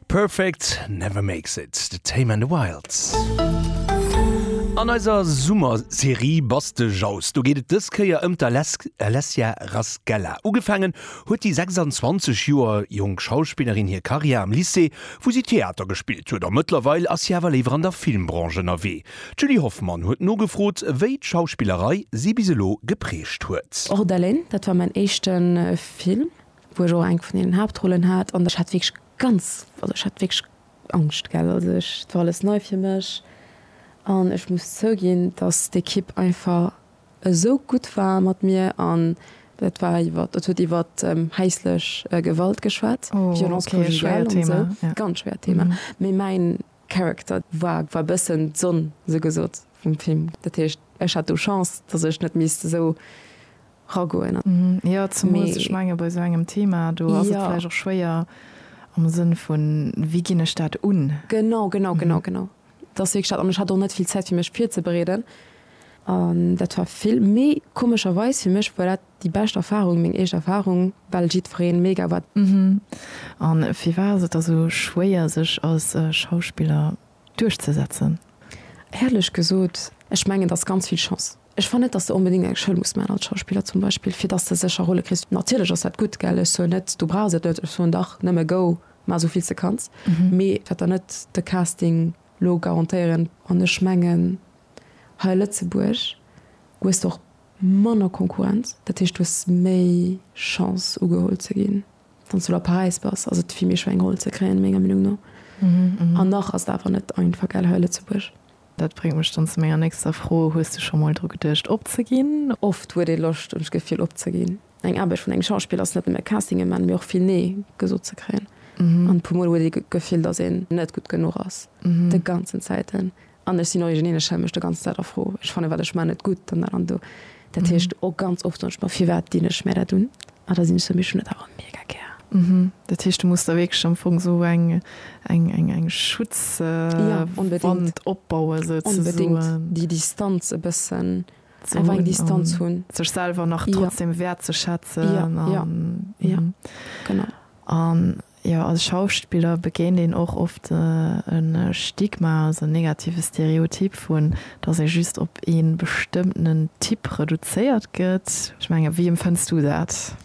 Perfect never makes it, The Tame and the Wilds. An eiser Summer-Serie Baste Jaus, do geet et dës Kéier ëm d'Alessia Rasquela. Ugefaangen huet déi 26 Joer jonk Schauspillerin hir Karriär am Lycée, wou si Theater gespillt huet. A mëttlerweil ass si awer léiwer an der Filmbranche ënnerwee. D'Julie Hoffmann huet nogefrot, wéi d'Schauspillerei si bis elo geprägt huet. Och d'Elaine, dat war mäin éischte Film, wou ech och eng vun deenen Haaptrollen hat, an ech hat wierklech ganz, also ech hat wierklech Angscht, gell. Also ech, et war alles nei fir mech an ech muss zouginn, dass d'Ekipp einfach esou gutt war mat mir an dat war iwwer, dat huet iwwer häislech Gewalt geschwat, Violence conjugale an esou, ganz schwéiert Thema, mee mäin Character war war bëssen d'Sonn, sou gesot, vum Film. Dat heescht, ech hat do Chance, datt ech net misst esou ragoen. Jo, zemools, ech menge bei esou engem Thema, do ass et vläicht och schwéier am Sënn vun, wéi ginn ech dat un? Genau, genau, genau, genau. Dat ass wierklech dat. An ech hat och net vill Zäit, fir mech virzebereeden. An dat war vill méi komescherweis fir mech, voilà. Déi bescht Erfahrung, meng eescht Erfahrung, well jiddfereen mega war. An firwat ass et da sou schwéier sech als Schauspiller duerchzesetzen? Éierlech gesot, ech mengen et ass ganz vill Chance. Ech fannen net dass de onbedingt eng Schoul muss maan als Schauspiller zum Beispill fir dass de sécher Rolle kriss. Natierlech ass dat gutt, gell, ech soen net du brauchs et net, ech soen dach nëmme go maan esou vill s de kanns, mee et wäert der net de Casting lo garantéieren. An ech mengen hei a Lëtzebuerg hues de och Manner Konkurrenz, dat heescht du hues méi Chance ugeholl ze ginn, wann s du lo a Paräis bass, ass et vill méi schwéier eng Roll ze kréien, menger Meenung no. An nach ass et awer net einfach, gell, hei a Lëtzebuerg. Dat bréngt mech dann zu menger nächster Fro, Hues du scho mol dru geduecht opzeginn? Oft huet ee Loscht, hunn ech d'Gefill, opzeginn. Eng Aarbecht vun engem Schauspiller ass net nëmme Castinge man, mee och vill Nee gesot ze kréien. An e puer Mol huet ee d'Gefill, datt een net gutt genuch ass, de ganzen Zäiten. An ech sinn origineel, ech stelle mech do ganz Zäit a Fro. Ech fannen, wat ech maan, net gutt an dat an do. Dat heescht, och ganz oft soen ech mer, firwat dinn ech mär dat un? A da sinn ech sou, mee ech hunn dat awer mega gär. Dat heescht, du muss der wierklech am Fong sou eng Schutzwand opbauen, souzesoen. Ja, onbedéngt. Déi Distanz e bëssen, einfach eng Distanz hunn. Sech selwer nach trotzdem wäertzeschätzen. Ja, ja, ja, genau. An Jo, als Schauspiller begéint een och oft e Stigma, also en negative Stereotyp vun, dass ee just op ee bestëmmtenen Typ reduzéiert gëtt. Ech mengen, wéi empfënns du dat?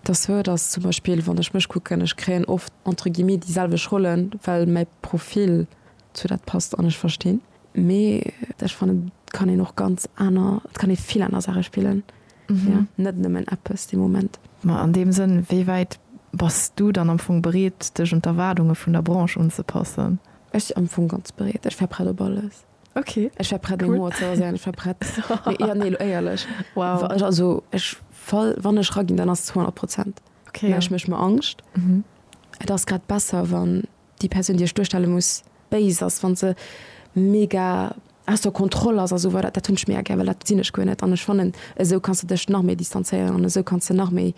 Dat sou, dass zum Beispill, wann ech mech kucken, ech kréien oft entre guillemets déi selwecht Rollen, well mäi Profil zu dat passt an ech verstinn, mee ech fannen, et kann een och ganz aner, et kann ee vill aner Saache spillen. mhm. net nëmmen Appes de Moment. Ma an dem Sënn, wéi wäit bass du dann am Fong bereet, dech un d'Erwaardunge vun der Branche unzepassen? Ech am Fong ganz bereet. Ech war prett op alles. Okay. Ech war prett cool. Mo ze se ech war prett ja, nee, éierlech wow. also ech fall wann ech ragin, dann ass 200 Prozent okay, ja. ech mech ma Angst. Mhm. Et ass grad besser wann Déi Persoun, déi ech duerstelle muss, béis ass, wa se mega aus der Kontroll ass a sou weider, dat hunn ech mega gär, well dat sinn ech guer net. An ech fannen, esou kanns de dech nach méi distanzéieren an esou kanns de nach méi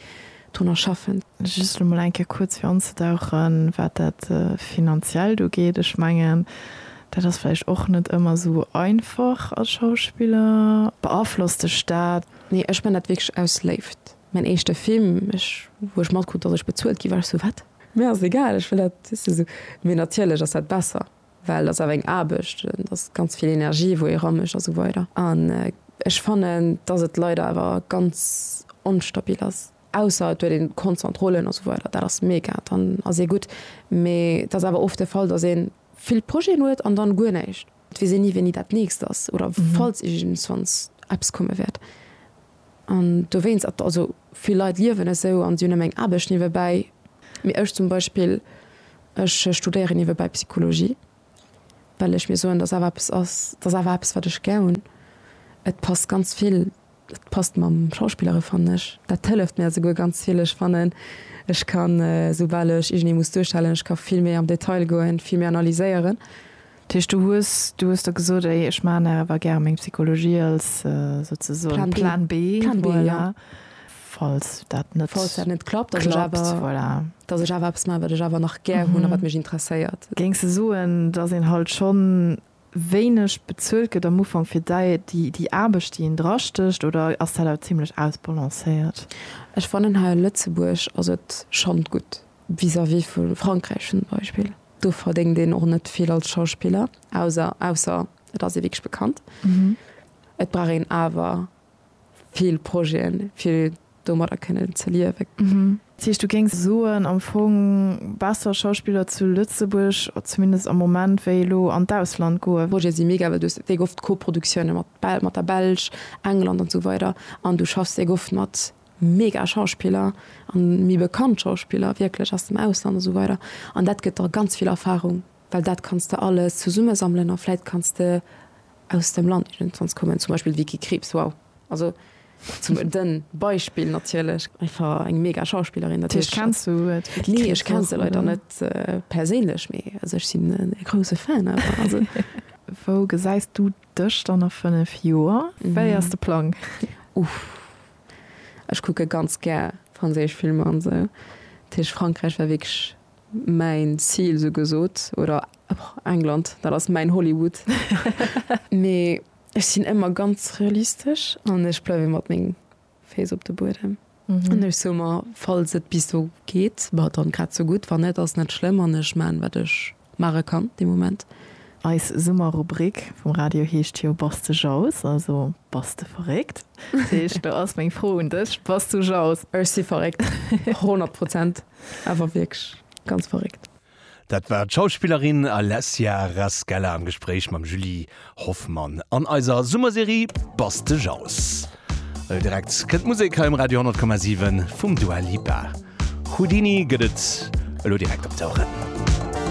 drunner schaffen. Just elo mol eng Kéier kuerz fir anzedauchen, wat dat Finanziellt ugeet. Ech mengen, dat ass vläicht och net ëmmer esou einfach als Schauspiller. Beaflosst dech dat? Nee, ech man dat wierklech aus Léift. Mäin éischte Film, wou ech matkrut, datt ech bezuelt gi war, ech sou, Wat? Mir ass egal, ech wëll dat just esou. Mee natierlech ass dat besser, well et ass awer eng Aarbecht, et ass ganz vill Energie wou ee ramécht a sou weider. An ech fannen, dass et leider awer ganz onstabil ass, ausser et huet een konstant Rollen a sou weider, dat ass mega, dann ass ee gutt. Mee et ass awer oft de Fall, dass een. vill Projeten huet an dann guer näischt. Et weess een ni wéini dat nächst ass oder falls iergendswanns eppes komme wäert an dowéinst et also vill Leit liewen esou an si hunn nëmme eng Aarbecht niewebäi mee ech zum Beispill ech studéieren niewebäi Psychologie well ech mir soen dass awer eppes ass dass awer eppes wat ech gär hunn et passt ganz vill Et passt mam Schauspillere fannen ech. Dat hëlleft mir esouguer ganz vill. Ech fannen ech ka soubal ech iergendee muss duerstellen, ech ka vill méi am Detail goen, vill méi analyséieren. Dat heescht du hues, du hues der gesot, ey ech maachen nach awer gär meng Psychologie als souzesoen Plan B, voilà, falls dat net klappt, voilà, datt ech awer eppes maachen wat ech awer nach gär hunn a wat mech interesséiert. Géings de soen, datt een halt schonn wéineg bezuelt gëtt am Ufank fir dei déi Aarbecht déi een dra stécht oder ass dat awer zimmlech ausbalancéiert? Ech fannen hei a Lëtzebuerg ass et schonn gutt vis-à-vis vu Frankräich zum Beispill. Do verdéngt een och net vill als Schauspiller, auser ausser et ass ee wierklech bekannt. Et brauch een awer vill Projeten, fir domadder kënnen ze liewen. Dat heescht, du géings soen, am Fong besser Schauspiller zu Lëtzebuerg, zumindest am Moment, wéi elo an d'Ausland goen? D'Projete si mega, well du hues déck oft Koproduktiounen mat mat der Belsch, England an esou weider an du schaffs déck oft mat mega Schauspiller an méi bekannt Schauspiller wierklech aus dem Ausland an esou weider an dat gëtt der ganz vill Erfahrung. Well dat kanns de alles zesummesammelen a vläit kanns de aus dem Land iergendwanns kommen, zum Beispill d'Vicky Krieps, wow, also zum e Beispill natierlech. Einfach eng mega Schauspillerin. Dat heescht, kenns du d'Vicky Krieps? Nee, ech kenn se leider net perséinlech, mee also ech sinn e grouse Fan awer. Wou gesäis du dech dann a fënnef Joer? Wéi ass de Plang? Uff, ech kucke ganz gär franséisch Filmer an esou, dat heescht Frankräich war wierklech Mäin Zil sou gesot, oder England, dat ass mäin Hollywood. Mee ech sinn ëmmer ganz realistesch an ech bleiwe mat menge Féiss op de Buedem. An ech soe mer, falls et bis do geet, bah dann grad sou gutt. Wann net, ass net schlëmm an ech maachen, wat ech maache kann dee Moment. Eis Summerrubrik vum Radio heescht jo Bass de Jauss, also Bass de verréckt. Dat heescht, do ass meng Fro un dech, Bass du Jauss? Ech si verréckt, honnert Prozent, awer wierklech ganz verréckt. Dat war d'Schauspillerin Alessia Rascella am Gespréich mam Julie Hoffmann an eiser Summerserie Bass de Jauss. Direkt kënnt d'Musek hei um Radio 10,7 vum Dua Lipa. Houdini gëtt et elo direkt op d'Oueren.